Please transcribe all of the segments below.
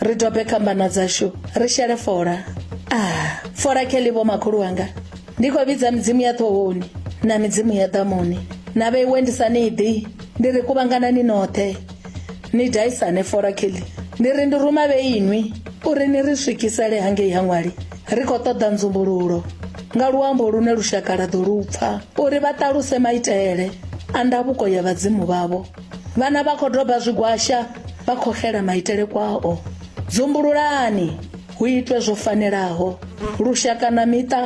ri dobe kambana dzashu ri shele fola a ah, fola kheli vho makhulu wanga ndi khou vhidza midzimu ya ṱhohoni na midzimu ya ḓamuni na vheiwe ndi sa ni ḓi ndi ri kuvhangana ni noṱhe ni daisane fola kheli ndi ri ndi ruma vheinwi uri ni ri swikisele hangei ha ṅwali ri khou ṱoḓa nzumbululo nga luambo lune lushaka ḽa ḓo lu pfa uri vha ṱaluse maitele a ndavhuko ya vhadzimu vhavho Vhana vha khou doba zwigwasha vha khou xela maitele kwao. Dzumbululani hu itwe zwo fanelaho. Lushaka na miṱa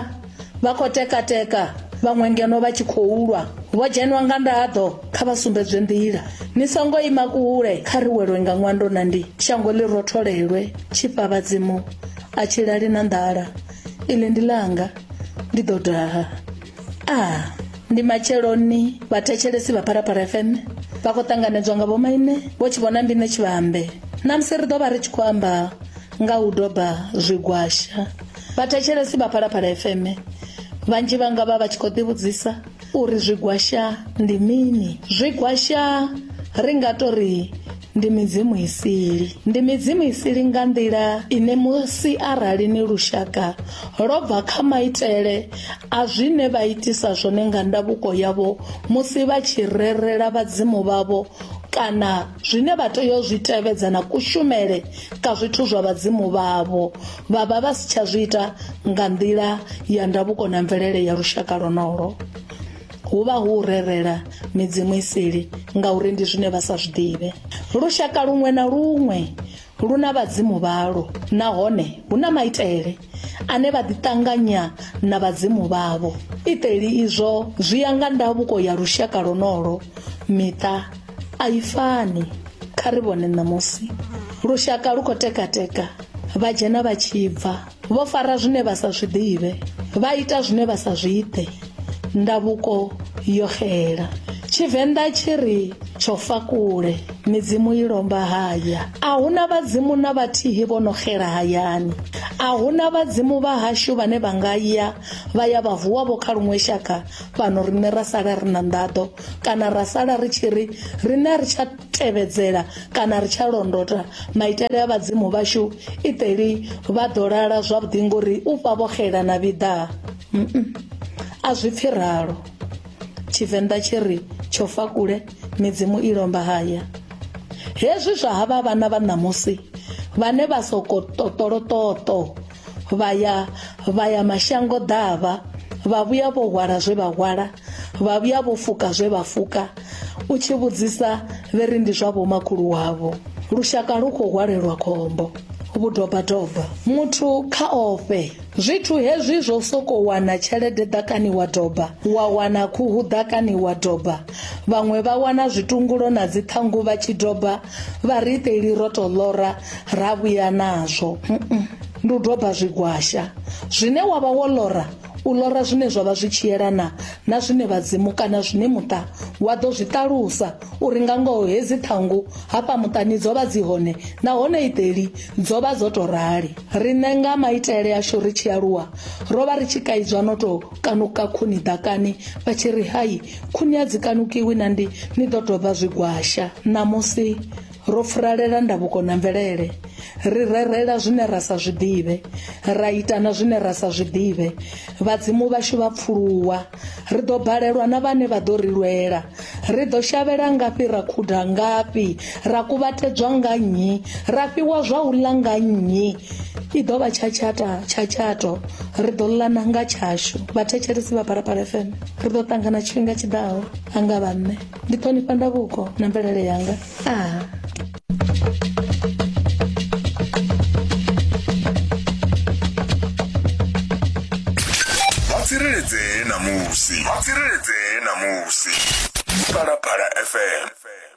vha khou tekateka vhaṅwe ngeno vha tshi khou lwa. Vho dzhenwa nga ndaḓo kha vha sumbedzwe nḓila. Ni songo ima kule kha ri welwe nga ṅwando na ndi shango ḽi rotholelwe tshifha vhadzimu a tshi lali na nḓala. Iḽi ndi ḽanga ndi ḓo daha. a ndi matsheloni vhathetshelesi vha pharapara fm vha khou ṱanganedzwa nga vhomaine vho tshi vhona mbine tshivhambe na musi ri ḓo vha ri tshi khou amba nga u doba zwigwasha vhathetshelesi vha phalaphala fm vhanzhi vha nga vha vha tshi khou ḓivhudzisa uri zwigwasha ndi mini zwigwasha ri nga to ri Ndi midzimu i sili. Ndi midzimu i sili nga nḓila ine musi arali ni lushaka lwo bva kha maitele a zwine vha itisa zwone nga ndavhuko yavho musi vha tshi rerela vhadzimu vhavho kana zwine vha tea u zwi tevhedza na kushumele ka zwithu zwa vhadzimu vhavho vha vha vha si tsha zwi ita nga nḓila ya ndavhuko na mvelele ya lushaka lwonolo hu vha hu u rerela midzimu iseli ngauri ndi zwine vha sa zwi ḓivhe lushaka luṅwe na luṅwe lu na vhadzimu vhalo nahone hu na maitele ane vha ḓiṱanganya na vhadzimu vhavho iteli izwo zwi ya nga ndavhuko ya lushaka lonolo miṱa a i fani kha ri vhone ṋamusi lushaka lu khou tekateka vha dzhena vha tshi bva vho fara zwine vha sa zwi ḓivhe vha ita zwine vha sa zwi ḓe ndavhuko yo xela tshivenḓa tshi ri tsho fa kule midzimu i lomba haya a huna vhadzimu na vhathihi vho no xela hayani a huna vhadzimu vha hashu vhane vha nga ya vha ya vha vuwa vho kha luṅwe shaka fhano riṋe ra sala ri na nḓaḓo kana ra sala ri tshi ri riṋe a ri tsha tevhedzela kana ri tsha londota maitele a vhadzimu vhashu iteli vha ḓo lala zwavhuḓi ngori u fha vho xela na vhiḓa a zwi pfi ralo tshivenḓa tshi ri tsho fa kule midzimu i lomba haya hezwi zwa havha vhana vha ṋamusi vhane vha soko ṱoṱoloṱoṱo vha ya vha ya mashango ḓavha vha vhuya vho hwala zwe vha hwala vha vhuya vho fuka zwe vha fuka u tshi vhudzisa vhe ri ndi zwa vhomakhulu wavho lushaka lu khou hwalelwa khombo vhudobadoba muthu kha ofhe zwithu hezwi zwo soko wana tshelede ḓakani wa doba wa wana khuhu ḓakani wa doba vhaṅwe vha wana zwitungulo na dziṱhangu vha tshi doba vhariteli ro tou ḽora ra vhuya nazwo ndi u doba zwigwasha zwine wa vha wo ḽora u ḽora zwine zwa vha zwi tshi yelana na zwine vhadzimu kana zwine muṱa wa ḓo zwi ṱalusa uri nga ngoho hedzi ṱhangu hafha muṱani dzo vha dzi hone nahone iteli dzo vha dzo tou rali riṋe nga maitele ashu ri tshi aluwa ro vha ri tshi kaidzwa no tou kanuka khuni ḓakani vha tshi ri hai khuni a dzi kanukiwi na ndi ni ḓo tou vha zwigwasha ṋamusi ro furalela ndavhuko na mvelele ri rerela zwine ra sa zwiḓivhe ra ita na zwine ra sa zwiḓivhe vhadzimu vhashu vha pfuluwa ri ḓo balelwa na vhane vha ḓo ri lwela Ri ḓo shavhela ngafhi ra khuda ngafhi ra kuvhatedzwa nga nnyi ra fhiwa zwa u ḽa nga nnyi i ḓo vha tshatshata tshatshato ri ḓo ḽana nga tshashu vhathetshelesi vha phalaphala fm ri ḓo ṱangana tshifhinga tshiḓaho anga vhanne ndi ṱhonifha ndavhuko na mvelele yanga vha tsireledzee na musi vha tsireledzee na musi phalaphala fm